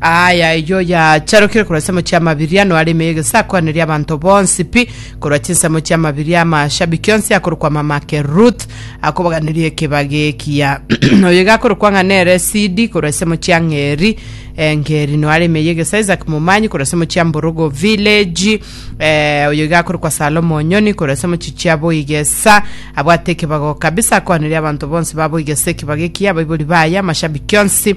Aye ayio yacharokire korwa ensemo chia mabiria, noare ime y'egesakoaneria abanto bonsi pi, korwa chinsemo chia mabiria amashabiki onsi akorokwa mamake Ruth, akobaganirie ekiba gekiya. Oyo iga akorokwa ng'a nere Sidi, korwa ensemo chia Ng'eri, eh, Ngeri noare ime y'egesa Isaac Momanyi, korwa ensemo chia Mborogo Village, eh, oyo iga akorokwa Salomo Onyoni, korwa ensemo chi chia Boigesa, abwate ekebago kabisa, akoaneria abanto bonsi ba Boigesa ekiba gekiya, abaibori baye, amashabiki onsi,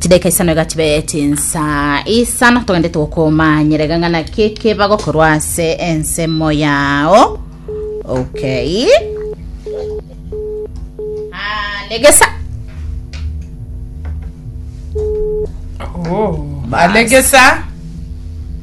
chidaika isano iga chibe chinsa isano togende togokomanyera iga ng'ana keke bagokorwa ase ensemo yao okay Ah, legesa Oh, Bas. alegesa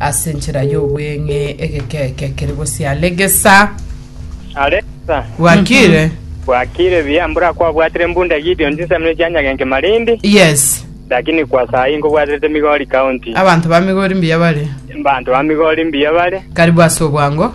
Ase enchera y'obweng'e egekeke kere gosia Legesa. Alexa, Gwakire? bwakire buya, mbora kwabwatire mbunda Gideon chinsamire chia Nyagenke Malindi, Yes. lakini kwa saa hii nkobwaterete Migori County. Abanto ba Migori mbuya bare. Banto ba Migori mbuya bare. Karibu ase obwango.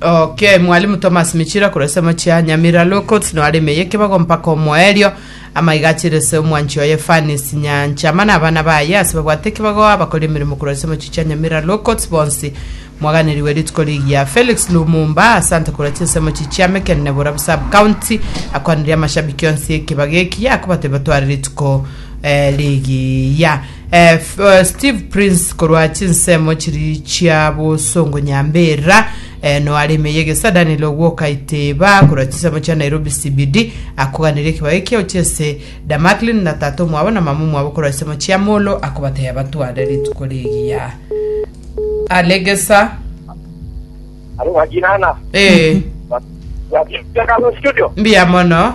Ok, Mwalimu Thomas Michira korwa esemo chia Nyamira Low Courts no areme yekebago mpaka omoerio amaiga achirese omwanchi oye Fanis Nyancha mana abana baye ase babwate ekebago abakora emeremo korwa esemo chi chia Nyamira Low Courts bonsi mwaganeriwe rituko rigiya Felix Lumumba asante korwa chinsemo chi chia Meken Neborab Sub County akwanire amashabiki onsi ekebago eki yakobatebia tware rituko eh, rigiya Eh, F- eh, Steve Prince korwa chinsemo chiri chia bosongo nyambera eh, noare ime yegesa Daniel Ogwoka Iteba korwa chinsemo chia Nairobi CBD akoganire ekibaga ekiao chiese da Macklin na tata omwabo na mama omwabo korwa chinsemo chia Molo akobatebia batware rituko rigiya alegesa Alo wajinana. eh Wajinana studio. mbiya mono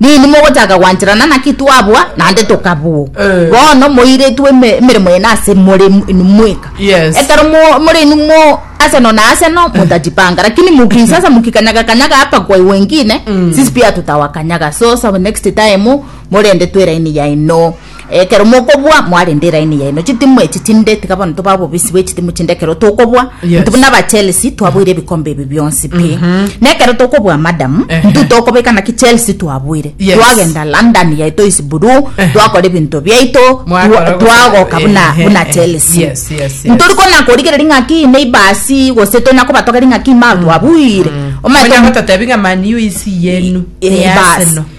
Nini mogochaka gwancherana naki twabua naende tokabua? Eh. Bono moiretwe eme- emeremo yane ase more m- inwe mweka. Yes. Ekero mo- more inwe mo ase no na ase no motajipanga lakini mukisa sasa mukikanyaga kanyaga hapa kwa wengine sisi pia tutawakanyaga so sa next time morende tu eraini yaino Ekero mokoboa mwarende eraini yaino chitimu echi chinde tiga bono toba obobisi bwe chitimu chinde ekero tokoboa Yes. ntu buna aba Chelsea twaboire ebikombe ebi bionsi pi na ekero tokoboa madam Ehe. ntu tokobeka naki Chelsea twaboire Yes. twagenda London yaito is blue Ehe. twakora ebinto biaito Mwakora twa- gose- twagoka buna ehe, buna ehe. Chelsea Yes, yes, yes. ntori kona korigereria ng'aki neighbors gose tonya kobatogeri ng'aki ma twabuire Omanyete Onye omu- gototebi ng'a Man U isi yenu, Eh, ni bas. Arsenal.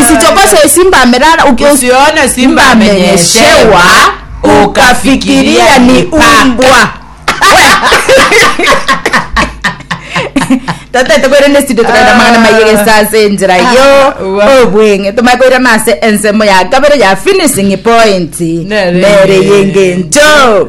Usichokose simba amelala uki- Usione simba amenyeshewa, ukafikiria ni umbwa. tataete koira nesido tokaira amang'ana maiye gesa ase enchera yo Ah, wa- obweng'e tomanye koirana ase ensemo ya kabere ya finishing point Nere. nere yengencho